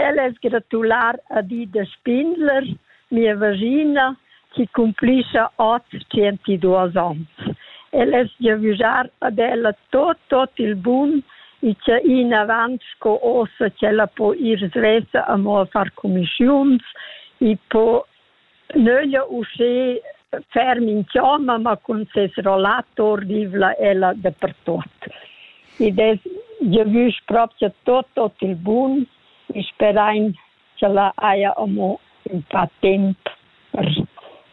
Ella es gratular a di da spindler, mia vagina, chi cumplischa ot tschentisduos ons. El es giavüschar ad ella tot, tot il bun e cha inavant sco ossa ch'ella po ir svessa amo a far cumischiuns e po Nöglia uschè fer minchioma, ma cun ses rollator vivla ella dapertuot. Id es giavüsch propcha tuot ot il bun e sperain ch'ella haja amo ün pa temp per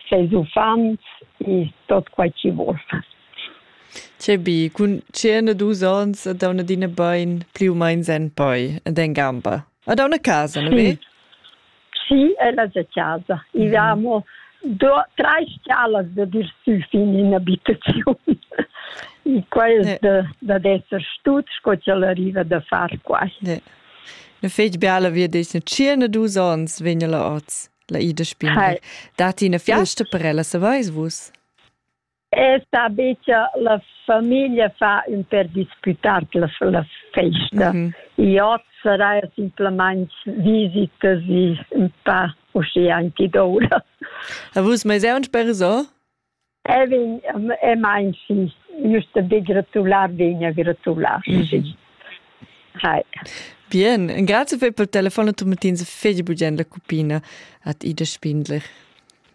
seis uffants e tuot quai chi voul far. Che bi, cun tschient e dus ons a dauna Dina bain plü u main sen poi ed en gamba. A dauna casa, na ve? Schi, ella se casa. I mm. amo do tre scalas da dir sü fin in abitaziun. I quai ne. da, da d'esser stut sco ch'el arriva da far quai. Ne. Ne fetg bella via dice, cirne dus ons vegna la oz, la Ida Spindel. Dati una fiesta per ella, se vais vus? E sta becha la famiglia fa ün per disputar la, la festa. Mm -hmm. I ot sarà simplamaing visitas i ün pa uschia anche d'ora. A vus mais è un perso? E vin, e mein sì, giusto di gratular, vegna gratular, mm -hmm. sì. Hi. Bien, grazie per il telefono, tu mettins fegli bugien la cupina at Ida Spindler.